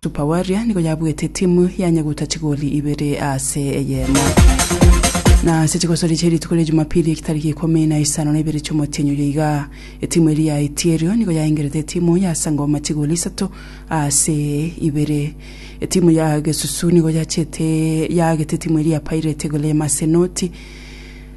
Super Warrior nigo yabuete timu yanyeguta chigoli ibere ase eyemo. Na ase chigosori chia rituko ria Jumapili ekitariki ikomi na isano na ibere chi'omotienyi oyo iga, etimu eria yaetie erio nigo yaengerete etimu ya Sangoma chigoli isato ase ibere. Etimu ya Gesusu nigo yachete yaagete etimu eria ya Pirate igoro y'Amasenoti.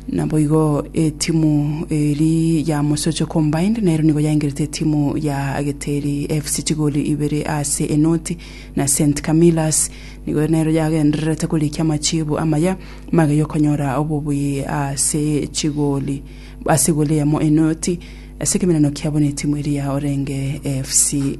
Naboigo etimu eri ya Mosocho Combined nero nigo yaingerete etimu ya Ageteri FC chigoli ibere ase enoti, na St Camillas nigo nero yagendererete korikia amachiibu amaya mage yokonyora obobui ase chigoli ase egoli eyemo enoti ase ekemerano kiabo netimu eria ya Orenge FC.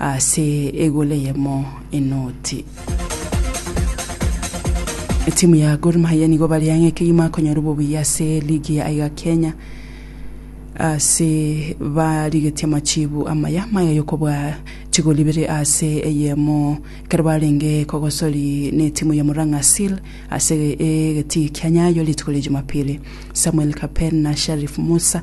Ase egolo eyemo enoti. Etimu ya Gor Mahia nigo bari ang'e kegima akonyora obobuya ase ligi ya iga Kenya ase barigetie amachibu amaya maya yokobua chigoli ibere ase eyemo kero barenge kogosori ne timu ya Murang'a Seal ase egetii kia Nyayo rituko ria Jumapili. Samuel Kapen na Sharif Musa